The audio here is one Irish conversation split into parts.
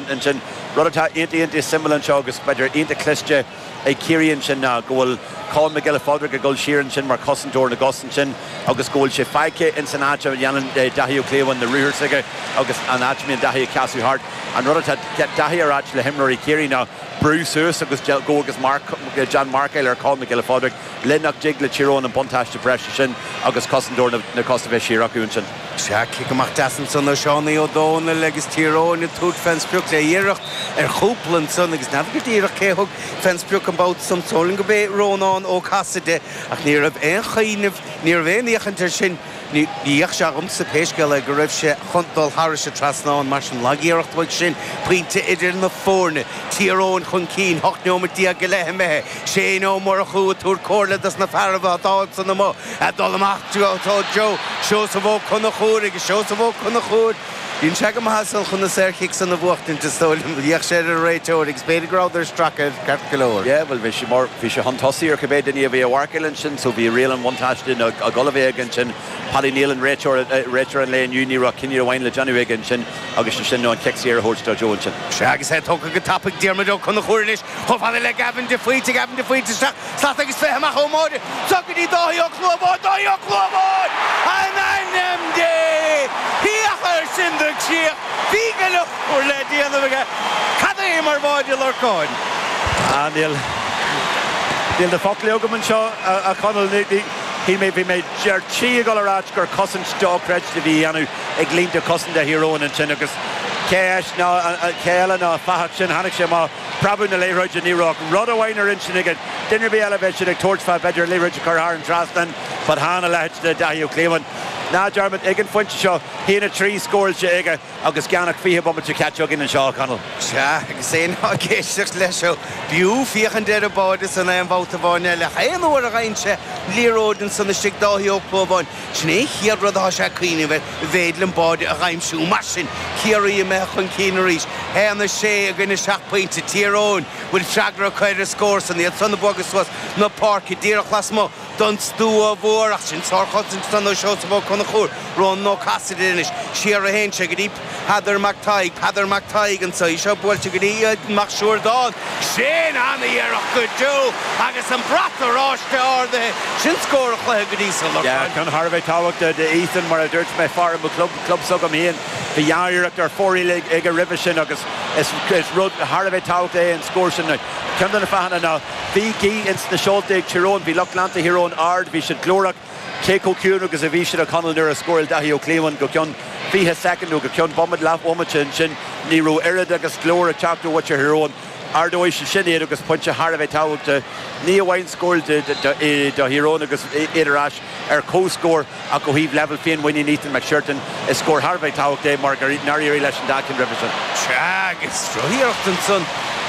ansin, rud atá iontach, iontach suimiúil anseo agus b'fhéidir iontach cliste ag Ciarraí ansin ná go bhfuil Conn Mac Giolla Phádraig ag dul siar ansin mar chosantóir na gcos ansin agus go bhfuil sé faighte ins an áit a dhéanann Daithí Ó Clúmháin na ruathair s'aige agus an áit a mbíonn Daithí ag casadh thart. An rud atá Daithí ag ráit le himreoirí Chiarraí ná brú suas agus go agus déan marcáil ar Conn Mac Giolla Phádraig le nach dtig le Tír Eoghain an buntáiste breise sin agus cosantóir na cos a bheith siar acu ansin. Sea, cic amach deas ansan ó Seánie Ó Dónaill agus Tír Eoghain ag tabhairt fén sprioc le iarracht ar chúpla ansan agus n'fheadar go díreach cé a thug fén sprioc an babhta san. Samhlaím gurb é Rónán Ó Casaide ach ní raibh aon chuimhneamh, ní raibh aon fhéachaint air sin, ní bheadh sé agamsa pé scéal é go raibh sé chun dul thairis an trasnán. Mar sin, lagiarracht uaidh sin, pointe idir na foirne, Tír Eoghain chun cinn, ocht neomat déag go leith imithe. Shane Ó Murchú ag tabhairt comhairle dos na fearaibh a d'fhág san amuigh a dhul amach go Joe. Seosamh Ó Conchúir agus Seosamh Ó Conchúir. Bíonn sé go maith as san chun na saorchic san a bhuachtaint is dóigh liom. D'fhéach sé ar an réiteoir agus b'fhéidir go rabhadar ag stracadh air ceart go leor. Yeah, bhuel, bhí sé mar, bhí sé chun tosaigh ar cibé duine a bhí a mharcáil ansin so bhí riail an bhuntáiste ná ag dul a bheith aige ansin. Paddy Neilan, réiteoir, réiteoir an lae inniu, ní raibh ach cinneadh amháin le déanamh aige ansin agus sé sin nó an cic saor a thabhairt do Joe ansin. Sea, agus é tugtha go tapaidh ag Diarmuid Ó Conchúir anois. Chomh fada le Gavin de Faoite, Gavin de Faoite isteach, slat agus fiche amach ón mbáide, seo go dtí Dáithí Ó Clúmháin, Dáithí Ó Clúmháin! In ainm Dé! Féach air sin de chríoch, bhí go leor le déanamh aige, cad é mar bháide a Lorcáin! Ah níl, níl na foclaí agam anseo a Chonaill, bhí mé, bhí mé, bhí mé, ar tí ag dul a ráit gur cosaint dochreidte a bhí á dhéanamh. ag línte cosanta Thír Eoghain ansin agus cé áis ná cé eile ná an fathach sin, tháinig sé amach ag preabadh na liathróide, ní raibh ach rud amháin ar intinn aige, duine ar bith eile bheadh siad ag tabhairt fá b'fhéidir an liathróid a chur thar an trasnán but chan a leithéid de Dhaithí Ó Clúmháin ná dearmad ag an phointe seo a haon a trí scóráilte aige agus gan ach 20 bomaite caite againn anseo, a Chonaill. Sea, agus éinne ag éisteacht leis seo, b'fhiú féachaint ar an mbáide san aon bhabhta amháin eile ach aon uair a fhaigheann sé liathróid ansan istigh Dáithí Ó Clúmháin, Sin é an chéad rud atá sé ag cuimhneamh air, a mhéid liom, báide a dh'aimsiú. Mar sin, Ciarraí imithe chun cinn arís. 1, 6 i gcoinne 7 pointe. Tír Eoghain bhfuil freagra acu ar an scór san. Iad san ag bogadh suas na páirce díreach lasmuigh don stua mhór. Ach sin sárchosaint san ó Seosamh Ó Conchúir. Rónán Ó Casaide anois siar a théann sé go dtí. Peadar Mac Taidhg, Peadar Mac Taidhg an tslí seo buailte go dtí Ethan Mac Siúrtáin. Sin an-iarracht go deo agus an brat oráiste ardaithe. Sin scór an chluiche go dtí seo. Yeah, ceann thar a bheith tábhachtach do Ethan mar a dúirt mé fear i mo chlub, club s'agam féin. Bhí dhá iarracht ar fóraoil aige roimhe sin agus is rud thar a bheith tábhachtach é an scór sin. Ceann de na fáthanna ná bhí gaoth ins na seolta ag Tír Eoghain. Bhí lucht leanta Thír Eoghain ard, bhí siad glórach. Cé chomh ciúin agus a bhí siad a Chonall nuair a scórail Dáithí Ó Clúmháin go ceann 20 soicind nó go ceann bomaite, leathbhomaite ansin ní raibh oiread agus glór ag teacht uait ar Thír Eoghain. Ardóidh sé sin iad agus pointe thar a bheith tábhachtach, ní amháin scór do Thír Eoghain agus iad ar ais ar comhscór ach ó thaobh leibhéal féinmhuiníne Ethan Mac Siúrtáin is scór thar a bheith tábhachtach é mar nár éirigh leis an dá cheann roimhe sin. Sea agus drochiarracht ansan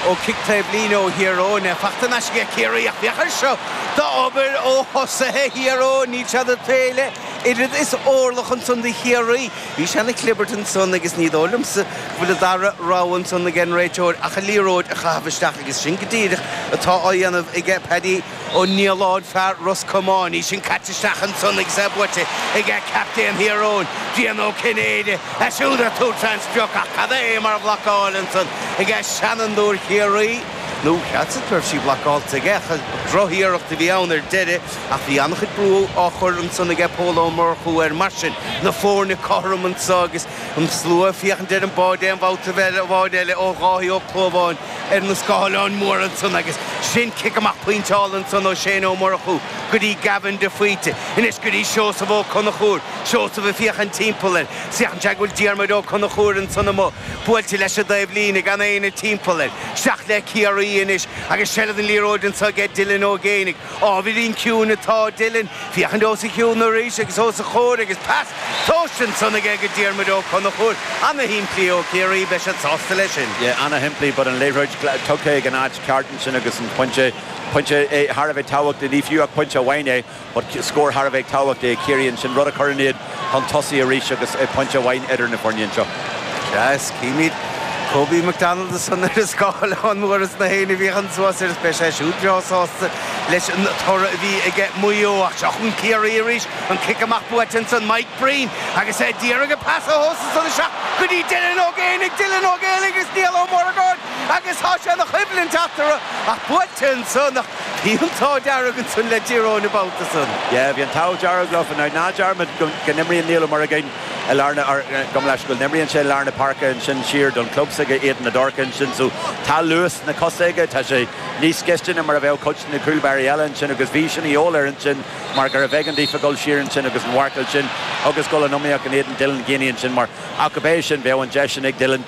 ó chic taobhlíne ó Thír Eoghain, faighte in aisce ag Ciarraí ach féach air seo D'obair ó thosaithe Thír Eoghain, níl siad ag géilleadh oiread is orlach ansan do Chiarraí. Bhí sé ina chlibirt ansan agus ní dóigh liomsa go bhfuil an dara rogha ansan ag an réiteoir ach an liathróid a chaitheamh isteach agus sin go díreach atá á dhéanamh aige Paddy Ó Nialláin, fear Ros Comáin. Í sin caite isteach ansan agus é buaite ag captaen Thír Eoghain, Brian Ó Cinnéide. Siúd ar thug Transtrioc ach cad é mar bhlocáil ansan ag seanfhondúir Chiarraí. nó cheapas go raibh sí blocáilte aige ach droch-iarracht a bhí ann ar deireadh ach bhí an-chuid brú á chur ansan aige Pól Ó Murchú air mar sin na foirne cothrom anso agus an slua ag féachaint ar an báide aon bhabhta amháin eile ó Dháithí Ó Clúmháin ar na scáileáin móra ansan agus sin cic amach pointeáilte ansan ó Shane Ó Murchú go dtí Gavin de Faoite anois go dtí Seosamh Ó Conchúir, Seosamh ag féachaint timpeall air. Feiceann sé go bhfuil Diarmuid Ó Conchúir ansan amuigh buailte leis an dtaobh líne gan éinne timpeall air. Isteach le Ciarraí anois agus seilbh ar an liathróid anso aige Dylan Ó Géinigh. Ábhairín ciúin atá Dylan féachaint os a chionn arís agus os a chomhair agus pas tomhaiste ansan aige go Diarmuid Ó Conchúir. Ana shimplí ó Chiarraí, beidh siad sásta leis sin. Yeah, ana shimplí but an liathróid tugtha ag an áit ceart ansin agus an pointe, pointe thar a bheith tábhachtach é, ní fiú ach pointe amháin é. Scór thar a bheith tábhachtach é ag Ciarraí ansin, rud a chuireann iad chun tosaigh arís agus pointe amháin idir na foirne anseo. Sea, is címid Kobe McDonald ansan ar an scáileán mór is na héinne a bhí chun suas air is beidh sé siúd breá sásta leis an toradh a bhí aige Maigh Eo. Ach seo chun Ciarraí arís, an cic amach buaite ansan Mike Breen agus é d'iarraidh an pas a thomhas ansan isteach go dtí Dylan Ó Géanaigh, Dylan Ó Géanaigh agus Niall Ó Muireagáin agus tá sé ina choimhlint eatarthu ach buaite ansan. Bhí an t-ádh dearg ansan le Tír Eoghain an babhta san. Yeah, bhí an t-ádh dearg leofa ná dearmad go n-imríonn Niall Ó Muireagáin i lár na, gabh mo leithscéal, go n-imríonn sé i lár na páirce ansin siar don club s'aige, Éadan na dTorc ansin so tá luas sna cosa aige, tá sé níos gaiste ná mar a bheadh cuid de na cúl báirí eile ansin agus bhí sin a dhíobháil air ansin mar gurbh éigean daofa a dhul siar ansin agus an mharcáil sin agus dhul in iomaíocht in éadan Dylan Geaney ansin mar ach go bé sin bheadh an deis sin ag Dylan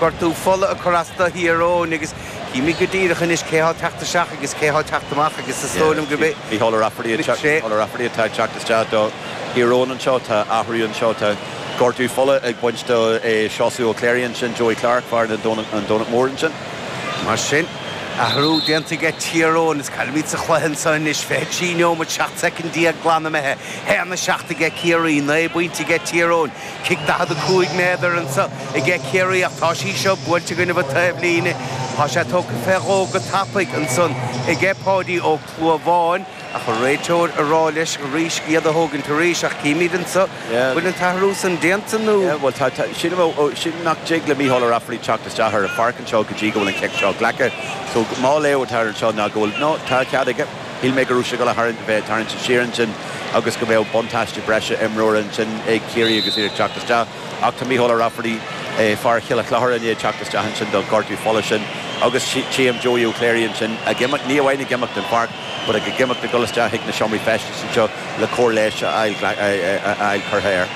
gortú fola ag cur as do Thír Eoghain agus chímíd go díreach anois cé thá ag teacht isteach agus cé thá ag teacht amach agus is dóigh liom gurb é Mícheál Ó Raifeartaigh an sé. Mícheál Ó Raifeartaigh atá ag teacht isteach do Thír Eoghain anseo. Tá athrú anseo, tá gortú fola ag baint do Seosamh Ó Cléirigh ansin, Joey Clarke, fear na Domhnach, an Domhnach Mór ansin. Mar sin, athrú déanta ag Tír Eoghain is cá bhfuilimid sa chluiche anseo anois, 23 neomad 17 soicind glan imithe, 1, 7 ag Ciarraí, 9 bpointe ag Tír Eoghain, cic 45 méadar anso aige Ciarraí ach tá sí seo buailte i gcoinnibh an taobhlíne. Tá sé tógtha fé dhó go tapaidh ansan aige Páidí Ó Clúmháin ach an réiteoir ag rá leis arís é a thógaint arís ach chímid anso an bhfuil an t-athrú san déanta nó. Bhuel tá, tá, sin a, ó, sílim nach dtig le Micheál Ó Raifeartaigh teacht isteach ar an pháirc anseo go dtí go bhfuil an cic seo glactha. So, mo léamh atá air anseo ná go bhfuil, no, tá cead aige. Shíl mé go raibh sé ag gabháil a tharraingt, a bheith tarraingte siar ansin agus go mbeadh buntáiste breise imreora ansin ag Ciarraí agus iad ag teacht isteach ach tá Micheál Ó Raifeartaigh, fear Choill an Chlochair, i ndiaidh teacht isteach ansin don ghortú fola sin agus tchím Joey Ó Cléirigh ansin ag imeacht, ní amháin ag imeacht den pháirc but ag ag imeacht ag dul isteach chuig na seomraí feistis anseo. le cóir leighis a fháil curtha air.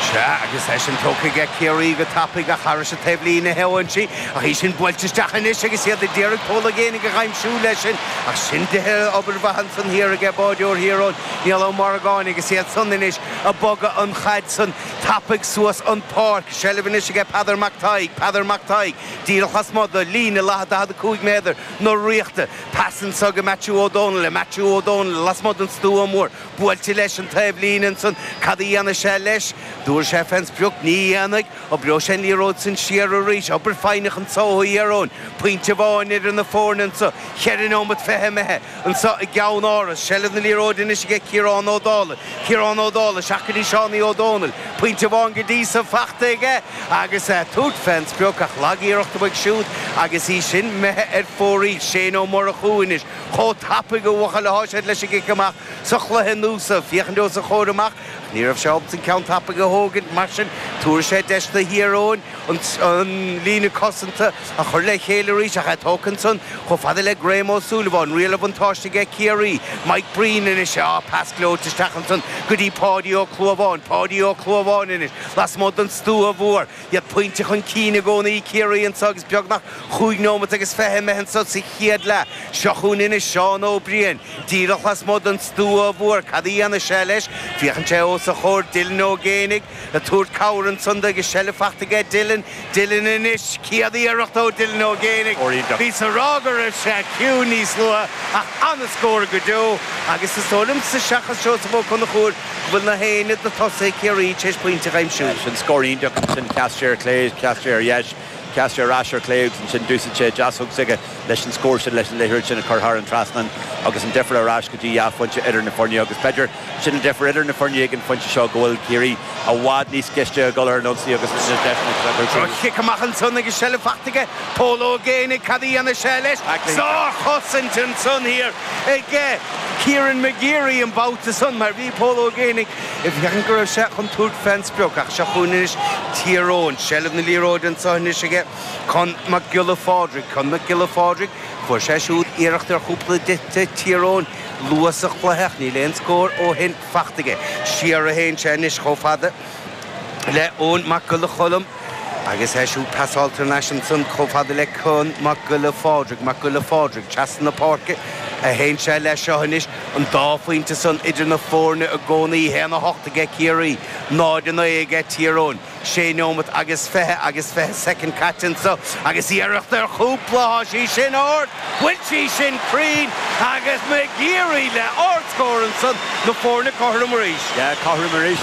Sea, agus í sin tógtha aige Ciarraí go tapaidh ach thairis an taobhlíne a théann sí ach í sin buailte isteach anois agus iad a d'iarraidh Pól Ó Géibheannaigh a aimsiú leis sin ach sin dithe obair mhaith ansan thiar aige báireoir Thír Eoghain, Niall Ó Morgáin agus iad san anois ag bogadh an chaid san tapaidh suas an páirc. I seilbh anois aige Peadar Mac Thaidhg, Peadar Mac Thaidhg díreach lasmuigh do líne leatha 45 méadar na Ríochta. Pas anso go Maitiú Ó Donnghaile, Maitiú Ó Donnghaile lasmuigh den stua mór, buailte leis an taobhlíne ansan cad a dhéanfaidh sé leis? Dtabharfaidh sé fén sprioc? Ní dhéanfaidh. Oibreoidh sé an liathróid san siar arís, obair foighneach anso ó Thír Eoghain. Pointe amháin idir na foirne anso, cheithre neomat fiche imithe, anso i gCeannáras. Seilbh na liathróide anois aige Ciarán Ó Dálaigh, Ciarán Ó Dálaigh isteach go dtí Seánie Ó Dónaill. Pointe amháin go dtí san faighte aige. Agus é ag tabhairt fén sprioc ach lag iarracht uaidh siúd agus í sin imithe ar fóraoil. Shane Ó Murchú anois chomh tapaidh ó bhuachaill athá siad leis an gcic amach sa chluiche inniu is é ag féachaint os a chomhair amach ach ní raibh sé ábalta an ceann tapaidh a thógaint mar sin tabharfaidh sé deis do Thír Eoghain an líne cosanta a chur le chéile arís ach é tógtha ansan chomh fada le Graham Ó Súilleabháin. Riail an bhuntáiste aige Ciarraí. Mike Breen anois. Á, pas gleoite isteach ansan go dtí Páidí Ó Clúmháin. Páidí Ó Clúmháin anois. Lasmuigh den stua mhór, iad pointe chun cinn i gcónaí Ciarraí anseo agus beagnach chúig nóimeat agus fiche imithe anseo sa chéad leath. Seo chugainn anois Seán Ó Briain. Díreach lasmuigh den stua mhór. Cad a dhéanfaidh sé leis? Féachann sé os a chomhair. Dylan Ó Géibheannaigh ag tabhairt cabhair ansan dó agus seilbh faighte aige Dylan. Dylan anois, céad iarracht ó Dylan Ó Géanaigh, bhíos ag rá go raibh sé ciúin níos luaithe ach an-scór go deo agus is dóigh liomsa seachas Seosamh Ó Conchúir go bhfuil nach éinne de thosaithe Ciarraí tar éis poinnte a aimsiú. Sin scór iontach ansin, sheas sé ar chlé, sheas sé ar dheis, sheas sé ar ais ar chlé agus ansin d'úsaid sé deasóg s'aige leis an scór sin leis an liathróid sin a chur thar an trasnán agus an difir ar ais go dtí dhá phoinnte idir na foirne agus b'fheidir Sin an difear idir na foirne ag an phointe seo go bhfuil Ciarraí i bhfad níos cliste ag dul ar an ionsaí agus na deiseanna atá tugtha dóibh. Cic amach ansan agus seilbh faighte aige. Pól Ó Géanaigh, cad a dhéanfaidh sé leis? Sár-chosaint ansan thiar ag Kieran McGeary an babhta san mar bhí Pól Ó Géanaigh ag féachaint go raibh sé chun tabhairt fén sprioc ach seo chugainn anois Tír Eoghain. Seilbh na liathróide anso anois aige Conn Mac Giolla Phádraig. Conn Mac Giolla Phádraig, fuair sé siúd iarracht ar chúpla pointe do Tír Eoghain. Luath sa chluiche, ach níl aon scór ó shin faighte aige. Siar a théann sé anois chomh fada le Eoin Mac Giolla Cholm agus é siúd pasáilte thar n-ais ansan chomh fada le Conn Mac Giolla Phádraig. Mac Giolla Phádraig trasna na páirce a théann sé leis seo anois. An dá phointe san idir na foirne i gcónaí. 1 a 8 aige Ciarraí, 0 a 9 aige Tír Eoghain. sé nóiméad agus fiche agus fiche soicind caite anso agus iarracht ar chúpla, tá sí sin ard, an bhfuil sí sin cruinn agus McGeary le ardscór ansan, na foirne cothrom arís. Yeah, cothrom arís.